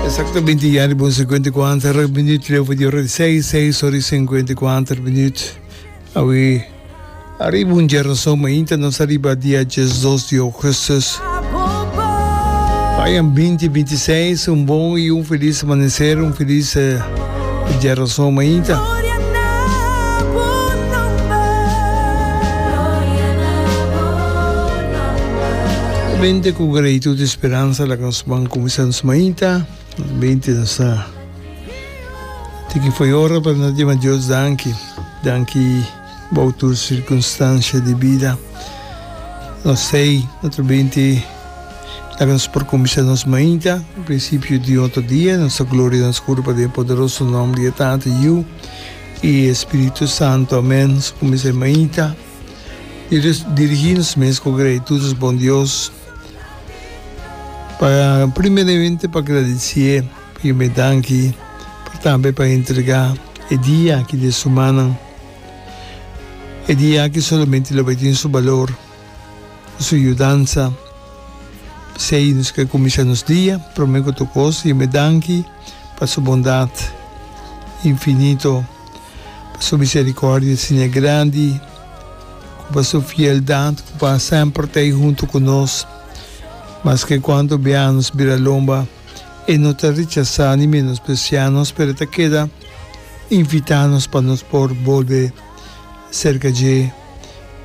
Exactamente ya riba un 54 minuut leu di ora di 6, 6 ora y 54 minuut. Awi arriba un gernason mainta nos arriba dia 12 di augustus. Payan 2026 un bon y un feliz amanecer, un feliz eh, gernason mainta. Bende ku gratitud i speransa laga nos ban kuminsá nos mainta. Nos bende nos ta tiki fo'i ora pa nos dima Dios danki. Danki bou tur sirkunstansia di bida. Nos sei otro bende laga nos por kuminsá nos mainta ku prinsipio di otro dia. Nos ta gloria nos kura pa den e poderoso nom di e Tata, Yiu i e Spiritu Santu. Amèn. Nos kuminsá e mainta. i dirigí nos mes ku gratitudis bon Dios. Pa primeramente pa gradisié, pa yume danki, pero tambe pa entregá e dia aki di e sumanan. E dia aki solamente lo bai tin su balor ku su yudansa. P'esei nos ke kuminsha nos dia promé ku tok kos yume danki pa su bondat infinito. pa su misericordia siña grandi, cu pa su fieldad cu pa semper ta ahi hunto cu nos, maske cuanto bia nos bira lomba, e no ta rechasa ni menosprecia nos, pero e ta keda invita nos pa nos por bolbe cerca dje.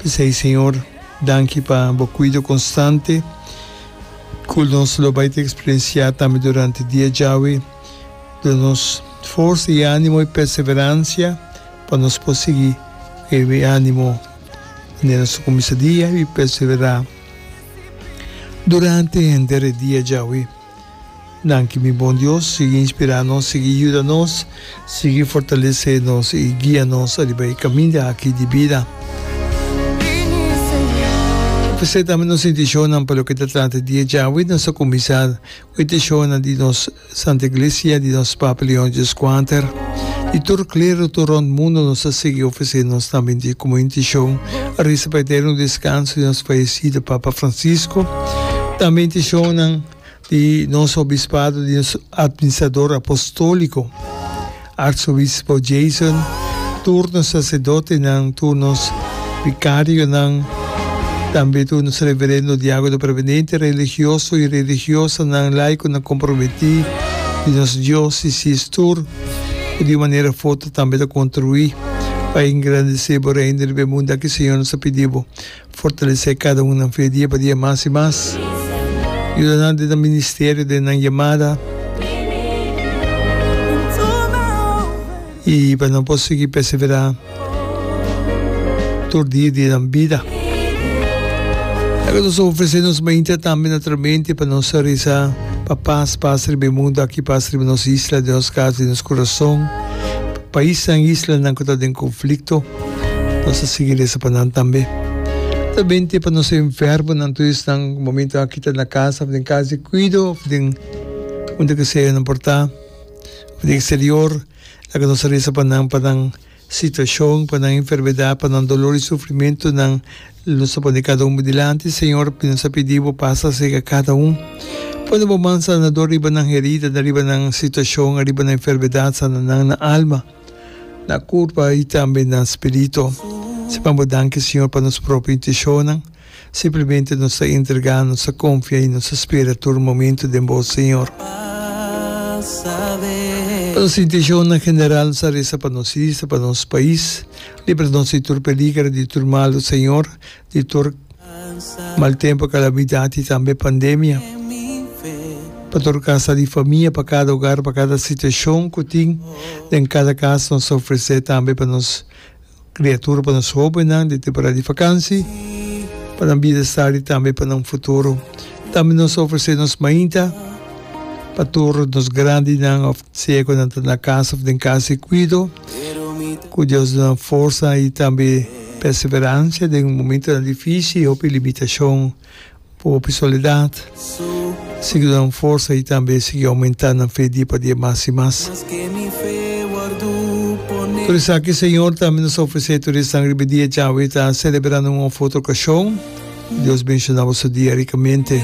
P'esey, Señor, danki pa bo cuido constante, cu nos lo bay ta experiencia tambe durante dia djawe, Duna nos forsa i animo i perseveransia pa nos por sigui kebe animo manera nos ta kuminsa dia i perseverá durante henter e dia djawe. Danki mi Bon Dios, sigui inspirá nos, sigui yuda nos, sigui fortalesé nos i guia nos ariba e kaminda aki di bida. Presentá nos intishonnan pa loke ta trata e dia djawe, nos ta kuminsá. Petishonnan di nos Santa Iglesia, di nos Papa Leon Xvi, di tur klero tur rònt mundu nos ta sigui ofresé nos tambe di komo intishon resa pa eterno deskanso di nos fayesido Papa Francisco, tambe intishonnan di nos Obispado, di nos Administrador Apostóliko. Arzobispo Jason, tur nos sacerdotenan, tur nos vicarionan, tambe tur nos reverendo diacono prevenente, religioso y religiosanan, laiconan comprometi di nos diocesis tur cu di un manera foto tambe ta contribui pa engrandece bo Reino riba e mundo aki, Señor, nos a pidi bo. Fortalesé kada un nan fe dia pa dia mas i mas. Yuda nan den nan ministerio, den nan yamada. I pa nan por sigui perseverá tur dia di nan bida. Ta ke nos a ofresé nos mainta tambe naturalmente pa nos a reza pa pas pasa riba e mundu aki, pas riba nos isla, den nos kas, den nos kurason, pais nan, islanan ku ta den konflikto. Nos a sigui resa pa nan tambe. Ta bin te pa nos enfermonan tur esnan ku momentu aki ta na kas of den kas di kuido of den unda ku sea nan por ta of den eksterior. Laga nos a resa pa nan pa nan situashon, pa nan enfermedat, pa nan dolor i sufrimentunan. Nos ta pone kada un bo dilanti, Señor, i nos a pidi bo pasa serka kada un. Pone bo man sanador riba nan heridanan, riba nan situashon, riba nan enfermedat, sana nan na alma. Na kurpa i tambe na spiritu. Siman bo danki, Siñor, pa nos propio intenshonnan. Simplemente nos ta entregá, nos ta konfia i nos ta spera tur momentu den Bo, Siñor. Pa nos intenshonnan general, nos ta resa pa nos isla, pa nos pais. Libra nos di tur peliger, di tur malu, Siñor. di tur mal tempu, kalamidat i tambe pandemia pa tur kasa di famia, pa kada ogar, pa kada situashon ku tin den kada kas. Nos ta ofresé tambe pa nos kriatura, pa nos hóbennan den temporada di fakansi, pa nan bienestar i tambe pa nan futuro. Tambe nos ta ofresé nos mainta, pa tur nos grandinan òf Siegonan ta na kas òf den kas di kuido ku Dios duna nan forsa i tambe perseveransia den momentonan difísil i hopi limitashon ku hopi soledat. Sigui duna nan forsa i tambe sigui oumentá nan fe dia pa dia mas i mas. Tur esaki Señor tambe nos ofresé tur esnan riba e dia djawe ta selebrando un òf otro okashon. Dios benshona boso dia ricamente.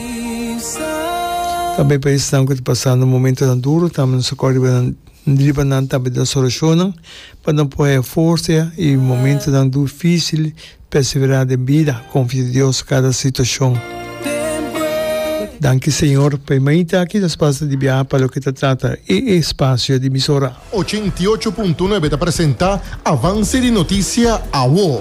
Tambe pa esnan cu ta pasando momentonan duro, tambe nos a cor riba nan tambe den nos oracionnan, pa nan por haya forza y momentonan duficil persevera den bida, confia di Dios cada situacion. Danki Señor pa e mainta aki nos pasa di biaha pa loke ta trata e espacio di Misora. Ochenta i ocho punto nuebe ta presenta avance di noticia awo.